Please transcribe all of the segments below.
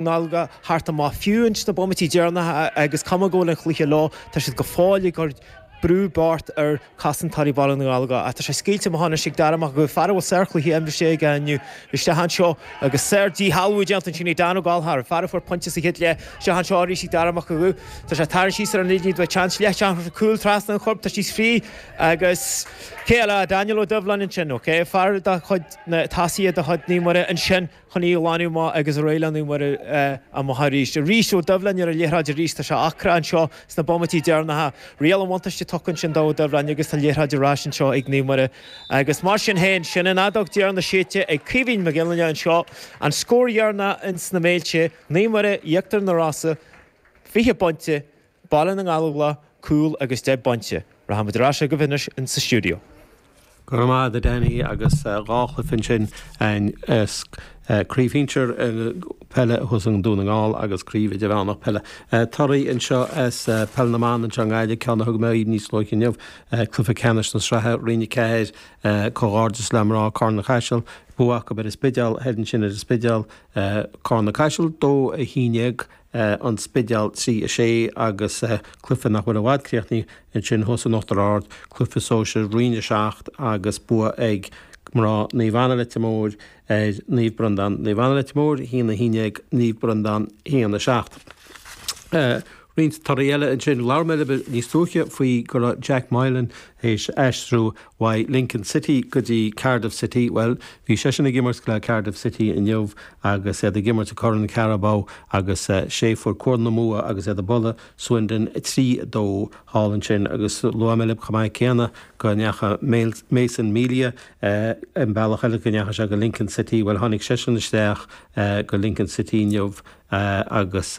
nGallóglach thart an mbath. Fiú ins na bomaití deireanacha agus cuma go bhfuil an cluiche leo tá siad go fóill ag cur brú bocht ar chosantóirí Bhaile na nGallóglach ach tá sé scaoilte amach anois ag Darragh Mac Aguidh, fear a bhfuil sárchluiche imriste aige inniu isteach anseo agus sár-dhíshealbhú déanta ansin ag Dan Ó Gallchóir, fear a fuair pointe sa chéad leath isteach anseo arís ag Darragh Mac Aguidh. Tá sé ag tarraingt síos ar an liathróid le seans leath deartha cúil trasna an choirp, tá siad fríth agus cé eile ach Daniel Ó Doibhlin ansin, ok, fear de chuid na Tassie de chuid Naomh Muire ansin. chun í a ghlanadh amach, agus ar aghaidh le Naomh Muire amach arís. Arís, Ó Doibhlin ar an liathróid arís, tá sé ocrach anseo sna bomaití deireanacha. Riail an bhuntáiste tugtha ansin do Ó Doibhlin agus tá an liathróid ar ais anseo ag Naomh Muire. Agus mar sin féin, sin an fheadóg dheireanach séidte ag Caoimhín Mac Gill-Fhinne anseo, an scór dheireanach ins na Méilte, Naomh Muire, Íochtar na Rosann, fiche pointe, Baile na nGallóglach, cúl agus deich bpointe. Rachaidh muid ar ais agaibh anois in sa stiúideo. Go raibh maith a'd a Danny agus dhá chluiche ansin as craobh shinsir peile thuas in Dún na nGall agus craobh idirmheánach peile. Toradh anseo as peil na mban anseo i nGaillimh, ceann a thug mé dhaoibh níos luaithe inniu, cluiche ceannais na sraithe, Roinn 4, comhghairdeas le mná Charna Caiseal, bua acu ar an Spidéal thoir ansin ar an Spidéal, Carna Caiseal, 2-11. an Spidéal trí 6 agus cluife nach bhfuil i bhfad críochnaithe ansin thuas in Uachtar Ard, cluife sóisir roinn 7 agus bua ag mná Naomh Anna Leitir Móir ar Naomh Breandán Naomh Anna Leitir Móir 1 11 Naomh Breandán 1 7. Roinnt torthaí eile ansin. Labhair mé libh níos luaithe faoi go raibh Jack Moylan théis aistriú uaidh Lincoln City go dtí Cardiff City, bhuel, bhí seisean ag imirt le Cardiff City inniu agus iad ag imirt i gCorn Carabao agus sé fuair cúl na mbua agus iad ag bualadh Swindon trí dó thall ansin agus luaigh mé libh chomh maith céanna go ndeacha Mason Melia an bealach eile, go ndeacha sé go Lincoln City, bhuel tháinig seisean isteach go Lincoln City inniu agus.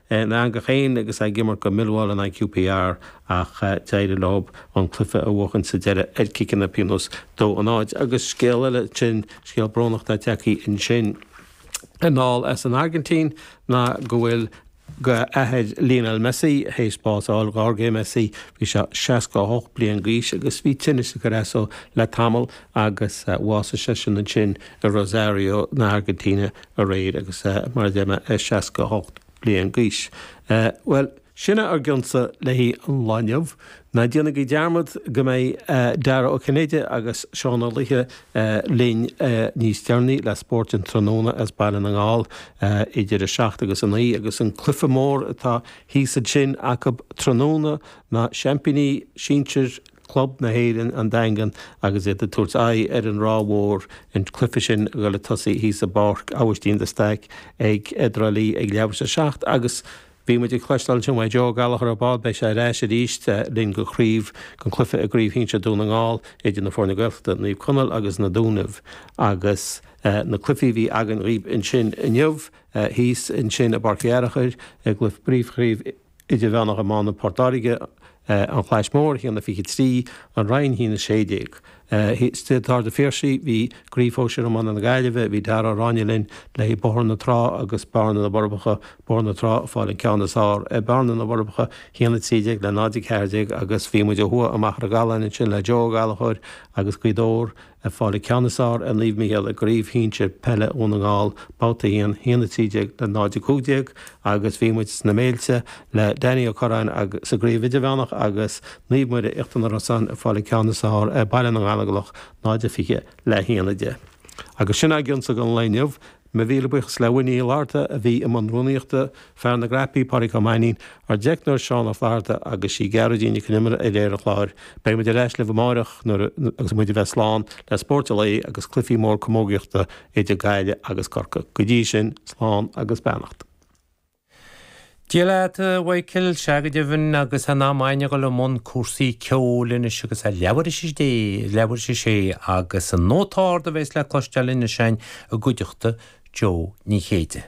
a n-eangach féin agus ag imirt do Millwall in aghaidh QPR ach d'éirigh leo an cluiche a bhuachan sa deireadh ar chiceanna pionóis, dó a náid agus scéal eile ansin, scéal brónach ag teacht ansin anall as an Airgintín ná go bhfuil athair Lionel Messi théis bás a fháil, Jorge Messi, bhí sé 68 bliain d'aois agus bhí tinneas ag cur as dó le tamall agus bhásaigh seisean ansin i Rosario na hAirgintíne, aréir agus mar a deir mé, 68 bliain d'aois. Bhuel, sin ár gcionsa le haghaidh an lá inniu. Ná déanaigí dearmad go mbeidh Dara Ó Cinnéide agus Seán Ó Laoithe linn níos deireanaí le Spórt an Tráthnóna as Baile na nGall idir 7 agus 9 agus an cluiche mór atá thíos ansin acu tráthnóna, na seaimpíní sinsir, Club na hÉireann an Daingean agus iad ag tabhairt aghaidh ar an Ráth Mhór, an cluiche sin ag dul ag tosaí thíos i bPáirc Abhaistín de Staic i dTrá Lí ag leathuair tar éis a seacht agus bhí muid ag cloisteáil ansin ó Joe Ó Gallchóir ar ball, beidh sé ar ais arís linn go craobh, go cluiche i gcraobh shinsir Dún na nGall idir na foirne Gaeltachta, Naomh Conaill agus Na Dúnaibh agus na cluichí a bhí againn dhaoibh ansin inniu, thíos ansin i bPáirc Uí Fhearchair i gcluiche phríomhchraobh Idirmheánach Iomána Phort Láirge, An Chlais Mhór, 1 23, An Rinn, 1 16. I Staid an Phiarsaigh bhí i gCraobh Shóisir Iomána na Gaillimhe, bhí Darragh Ó Ráinne linn, le haghaidh Bóthar na Trá agus Bearna na bhForbacha, Bóthar na Trá ag fáil an ceann is fearr ar Bhearna na bhForbacha, 1 13 le 0 14, agus bhí muid ó thuaidh i Machaire Gathlán ansin le Joe Ó Gallchóir agus Gaoth Dobhair, Ag fáil an ceann is fearr ar Naomh Mícheál i gCraobh Shinsir Peile Dhún na nGall, Babhta 1, 1 13 le 0 15 agus bhí muid sna Méilte le Danny Ó Curráin agus sa gCraobh Idirmheánach agus Naomh Muire Íochtar na Rosann ag fáil an ceann is fearr ar Baile na nGallóglach 0 20 le 1 10. Agus sin againn Spórt an Lae inniu. Míle buíochas le Winnie Uí Fhlatharta a bhí i mbun rúnaíochta, fear na gcnaipí Pádraig Ó Mainín, ár dteicneoir Seán Ó Flaithearta agus is í Gearóidín Nic Con Iomaire a léirigh an clár. Beidh muid ar ais libh amárach ar ndóigh agus muid a bheith slán le Spórt an Lae agus cluiche mór camógaíochta idir Gaillimh agus Corcaigh. Go dtí sin, slán agus beannacht. Dia leat, a Mhichael, sea go deimhin agus in am ainn a dhul i mbun cúrsaí ceoil anois agus é leathuair tar éis a sé agus An Nóta Ard a bhéas le cloisteáil anois ainn i gcuideachta Jó Ní Chéide.